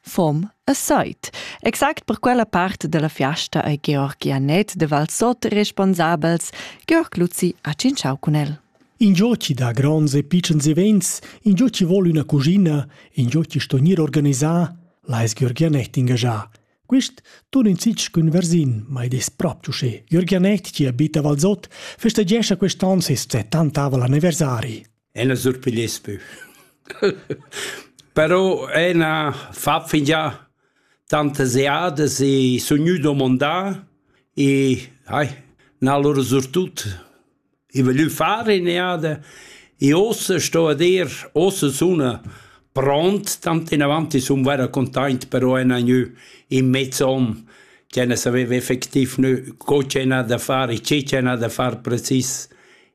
Fom e seit. Exact per quella part della fiasta ei Georg Janet de Valsot responsabels. Georg Luzi ha cinciau cun el. Ingio ci dà gronds e piccens events, ingio ci vol üna cugina, ingio ci sto gnir organisà, l'ais Georg Janet ingagià. Quist tun in sich cun versin, ma id es propi uschè. Georg Janet, ci abita a Valsot, festagescha quest'on ses 70 anniversari. Ella surpigliess pü. Però ena fa fingià tantas eadas e sun gnü domandà e ai n'ha lura surtut i voglü far in'eada e uossa sto a dir, uossa suna pront, tant inavant i sun vaira containt, però ena gnü in mez on ch'ella saveva effectiv gnü co ch'ena da far e che ch'ena da far precis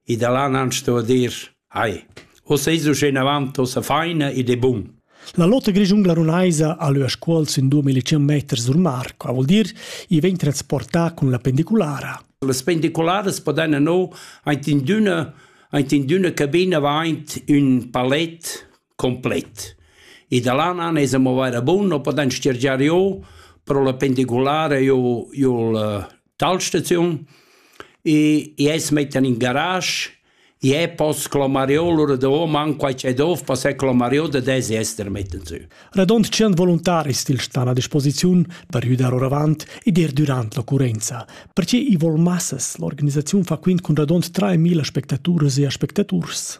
E da là nan sto dir «Ai, oz eis uschenavant ussa faina ed è bun». La lotta grischungla runaisa ha leu a Scuol sin 2100 meters sur Marco, ha vul dir, i vegn transportà cun la pendiculara. Las pendicularas podan no aint in d'üna aint in d'üna cabina va aint ün palet complet. I da l'ana nes a movaira bun, o poden stirgiar io, pro la pendiculare io, io la talstaziun, e i es metten in garage, je pos clomar io lura do man quai c'è dov, pas è clomar io da desi ester metten su. Radont 100 voluntaris til stan a disposiziun per judar oravant ed er durant l'occurrenza, perché i vol massas l'organisaziun fa quint cun radont 3000 spectaturas e aspectaturs.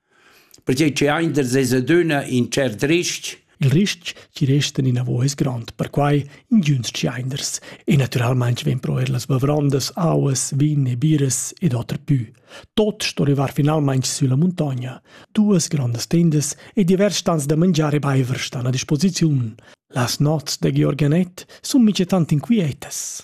pertgei che ein da sesa dunna in cert ristg. Il ristg chi restan inavo es grand, perquai ingüns tscheiners e naturalmaing vegn pro eir las bavrondas, auas, vin e biras ed oter pü. Tot sto rivar finalmaing sülla muntogna. Duas grandas tendas e divers stans da mangiar e baiver stan a disposiziun. Las nots da Georg Anett sun mica tant inquietas.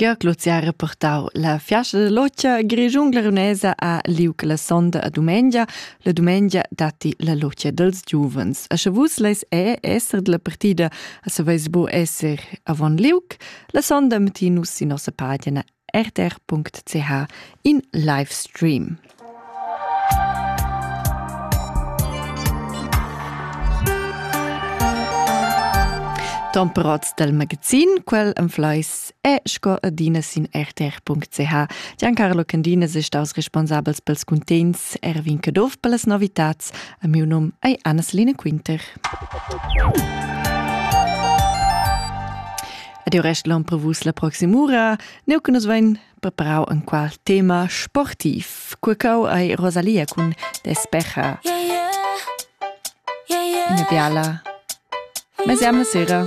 Georg Luzzi ha reportau la fiasta da lotga Grischun glarunesa a liug la sonda a dumengia. La dumengia datti la lotga dels giuvens. A sche vus leis è esser della partida, a saveis bu esser avon liug. La sonda mettin nus sin nossa pagina rtr.ch in live stream. Temperats dal magazin, quel en Fleis è sco adina sin rtr.ch. Giancarlo Candinas è staus responsabels pels cuntents Erwin Caduff per las novitats. A miu num è Anna-Celine Quinter. Ed il rest l'on prevus la proxima ura. Neu che nus vein preparau enqual tema sportiv. Curcau ei Rosalia cun Despecha. Yeah, yeah. Yeah, yeah. Ina biala. Mesiam la sera.